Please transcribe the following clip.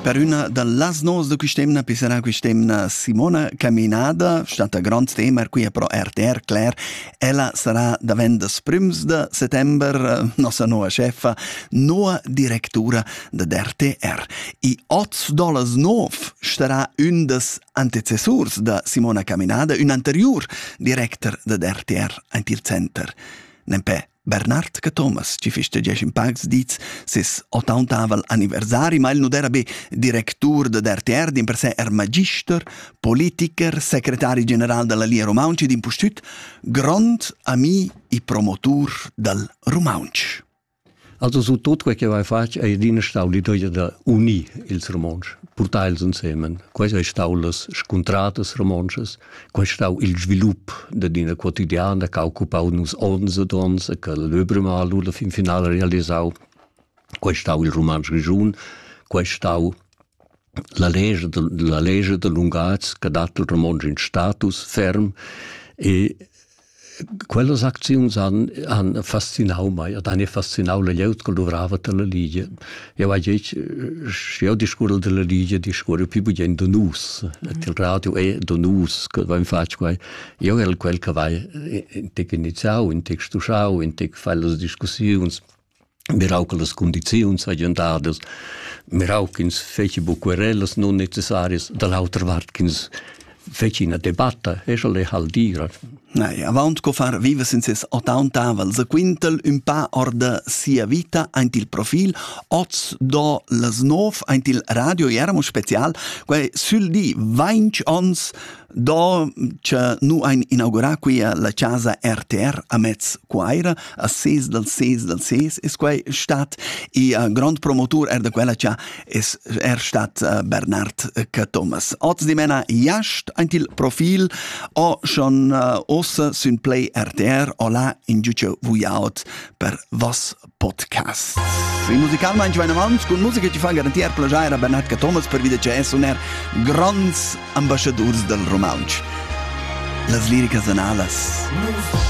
Per üna da las novas da quist'emna pissarà quist'emna Simona Caminada, stata grand tema qui pro RTR Cler. Ella sarà davent das prüms da settember nossa noa chefa, noa directura da RTR. I oz dolas nov starà ün das antecessurs da Simona Caminada, ün anteriur director da RTR, aint il center. Nempè Bernard Cathomas ci fist diesch in pacs dits ses ottauntavel anniversari, ma il nu d'era be directur da RTR, din per se er magister, politiker, secretari general della Lia Romaunci, din pustüt grond ami e promotur dal Romaunch. Also su tot quel che vai fatg è adina stau l'idea da unir ils romontsch, portar els insemen. Quai è stau las scuntratas romontschas Quei stau il svilup dad ina quotidiana che ha occupau nus onns ed onns e che l'Öbremal la fin finala realisau. Quei stau il Rumantsch Grischun, quei stau la legge, la legge de lunghaz che dat il romontsch in status ferm e Quellas acziuns han, han fascinau mei ed han fascinau la glieud che luvrava dalla Ligia. Jau hai detg, sche jau discurrel dalla Ligia, discurre più bien da nus. Et il radio è da nus che vain fatg quai. Io el quel che vai intec iniziau, intec stuschau, intec fai las discussiuns. mirau che las condiziuns hagien dadas, mirau ch'ins feci buc querellas non necessarias, da l'autra vart ch'ins feci ina debatta, e sche le hal dira. Nei, avant co far viva sin ses ottauntavel se quintel un pa orda sia vita aint il profil oz do las nov aint il radio eramo special quai sül di 20 ons Do cha nu hain inaugurà quia la chasa RTR a Mez Cuaira a ses dal ses dal ses es quai stat e uh, grond promotur er da quella cha es er stat uh, Bernard Cathomas. Oz dimena jast aint il profil o schon uh, ossa sün play RTR o là in giuche vuiaut per vas podcasts. In musicalmain vainavant cun musica ti fa garantir plajair a Bernhard Cathomas per vida che è suner gronds ambasciadurs dal rumantsch. Las liricas analas. Musica